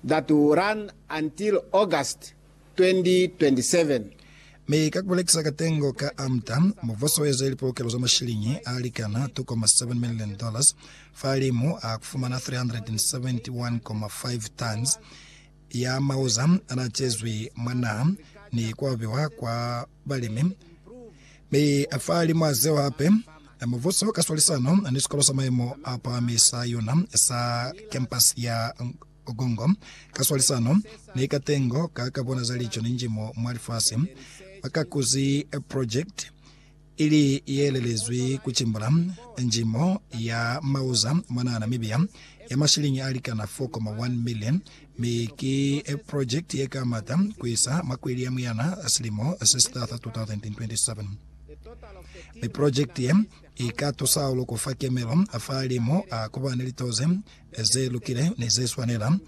that will run until August 2027. Mi ka kubelekisa katengo ka AMDA, mubuso ueze lipolokelo za mashilingi alikana K2.7 million, fahalimu a kufumana 371.5 tons ya mauza anaacezwi mwa naha ni kuabiwa kwa balimi, mi a fa limwa zeo hape. Mubuso ka swalisano ni sikolo sa maimo a pahami sa yona sa kempasi ya Nkongo ka swalisano ni katengo ka ka bona za lico ni njimo mwa lifasi, ba ka kuzi project ili ye lelezwi ku cimbula njimo ya mauza mwanaa Namibia ya mashilingi a likana 4.1 million Mi ki project ye ka mata ku isa mwa kweli ya muyana silimo se si taha sa 2027. Mi project ye i ka tusa hahulu ku fa kemelo fa limu ku ba ni lito ze ze lukile ni ze swanela,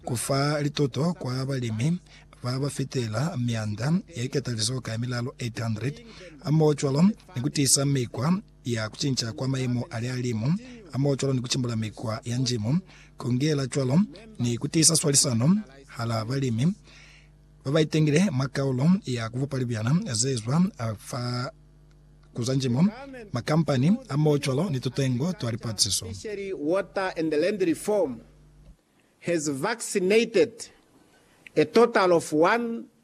ku fa lituto kwa balimi ba ba fitela mianda ye ketalizoho ka ye milalo 800, hamoho cwalo ni ku tiisa mikwa ya kucinca kwa mayemo a lihalimu a moyo cwalo ni kucimbula mikwa ya njimo, kungela cwalo ni kutiisa swalisano hala balimi babaitengile mwa kaulo ya kubupa libyana zezwa fa kuza njimo, makampani a moyo cwalo ni tutengo twa lipaciso. Fishery, Water and Land Reform has vaccinated a total of one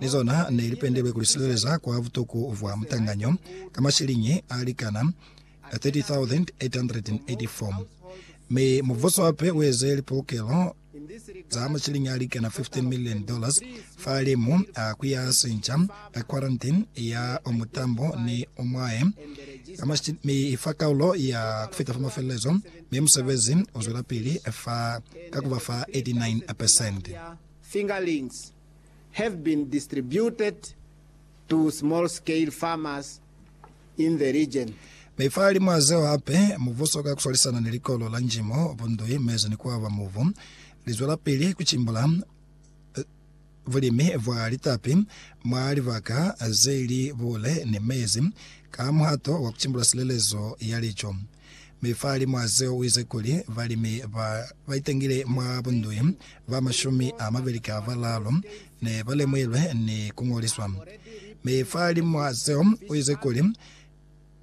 Ni zona ne li pendelwe ku li sileleza kwa butuku bwa mutanganyo ka mashiliñi a likana ka 30,884, mi mubuso hape u eze lipolokelo za mashiliñi a likana 15 million dollars fahalimu a ku ya sinca ka quarantine ya o mutambo ni o mwahe ka mashiliñi, mi i fa kaulo ya ku fita fa mafelelezo, mi musebezi u zwelapili fa ka ku ba fa 89 percent. Fingerlings have been distributed to small scale farmers in the region. Mi fahalimw'a zeo hape, mubuso ka ku swalisana ni Likolo la Njimo, Bundui, Mezu ni Kuaba Mubu, li zwelapili ku cimbula bulimi bwa litapi mwa libaka ze li buule ni mezi ka muhato wa ku cimbula silelezo ya lico. Mi fahalimwazeo uize kuli, balimi ba baitangile mwa bundui ba mashumi amabeli ka balaalu ne balemuhilwe ni kungoliswa. Mi fahalimwazeo uize kuli,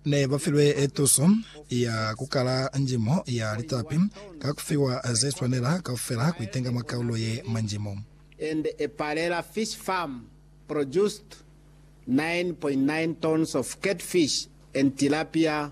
ne bafilwe tuso ya kukala njimo ya litapi ka kufiwa zeswanela kaufela kuitenga mwa kaulo ye mwa njimo. and a Palela fish farm produced nine point nine tons of catfish and tilapia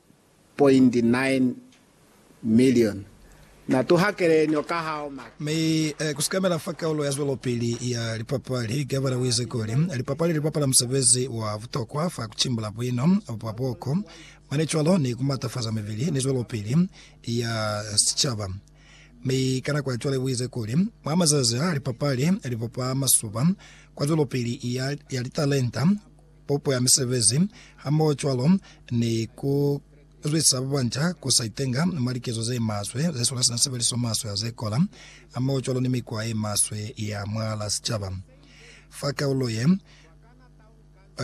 2.9 million na tuhakele nio ka hao ma. Mi ku sikamela fa kaulo ya zwelopili ya lipapali, Gavana u ize kuli, Lipapali li bapala musebezi wa butokwa fa ku cimbula buino bwa boko mane cwalo ni ku matafaza mibili ni zwelopili ya sicaba. Mi ka nako ya cwale u ize kuli, Mwa mazazi a, lipapali li bopa masuba kwa zwelopili ya litalenta, pupo ya misebezi, hamohocwalo ni ku zwisa ba banca ku sa itenga mwa likezo ze maswe, ze sula sina sebeliso maswe ya ze kola, hamohocwalo ni mikwa ye maswe ya mwal'a sicaba. Fa kaulo ye,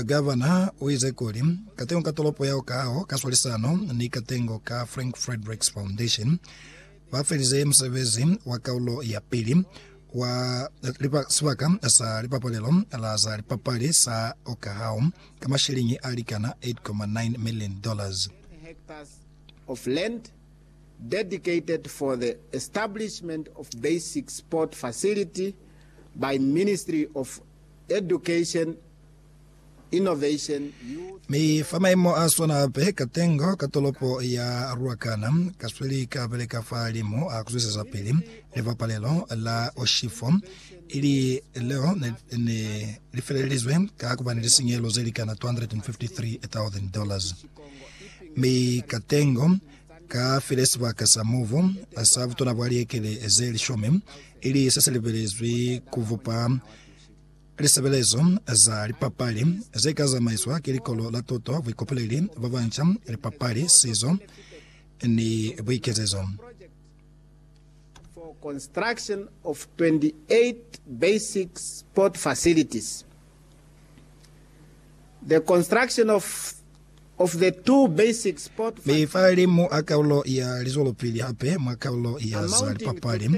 Gavana u ize kuli, Katengo ka tolopo yeo kaho ka swalisano ni katengo ka Frank Fredericks Foundation, Ba felize musebezi wa kaulo ya pili wa sibaka sa lipapalelo la za lipapali sa Okahau ka masheleñi a likana $8.9 million. Mi fa maimo a swana hape, katengo ka tolopo ya Ruacana ka sweli ka beleka fahalimu a ku zwisezapili Libapalelo la Oshifo, ili leo ne ne li felelizwe ka ku ba ni lisinyehelo ze li kana $253,000. Mi katengo ka file sibaka sa mubu sa butona bwa liekele ze lishumi, ili se se lebelezwi ku bupa Lisebelezo za lipapali ze ka zamaiswa ki Likolo la Tuto, Buikopoleli ba Banca, Lipapali, Sizo ni Buikezezo. for construction of 28 basic sport facilities, the construction of Be fa limu a kaulo ya lizwelopili hape mwa kaulo ya za lipapali,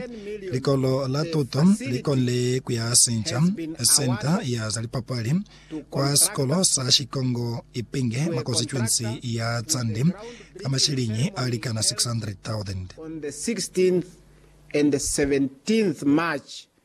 likolo la tuto li konile ku ya sinca senta ya za lipapali kwa sikolo sa Shikongo Ipinge mwa konsituensi ya Tsande ka mashiliñi a likana 600,000.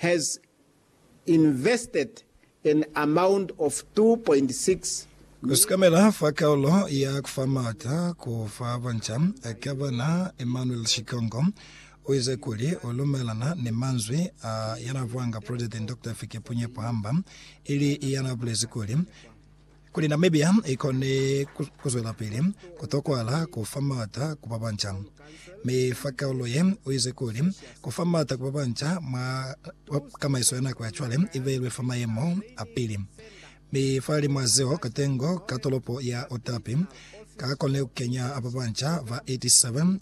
has invested an amount of 2.6 Kusikamela fa kaulo ya kufa maata ku fa banca, Gavana Emmanuel Shikongo uize kuli ulumelana ni manzwi a yanavwanga President Doctor Hifikepunye Pohamba ili yanabulezi kuli, Kuli Namibia i kone ku zwelapili, ku tokwahala ku fa m'ata ku ba banca. Mi fa kaulo ye, u ize kuli, Ku fa m'ata ku ba banca mwa tamaiso ya nako ya cwale i beilwe fa mayemo a pili. Mi fahalimw'a zeo, katengo ka tolopo ya Otapi ka kone ku kenya ba banca ba 87,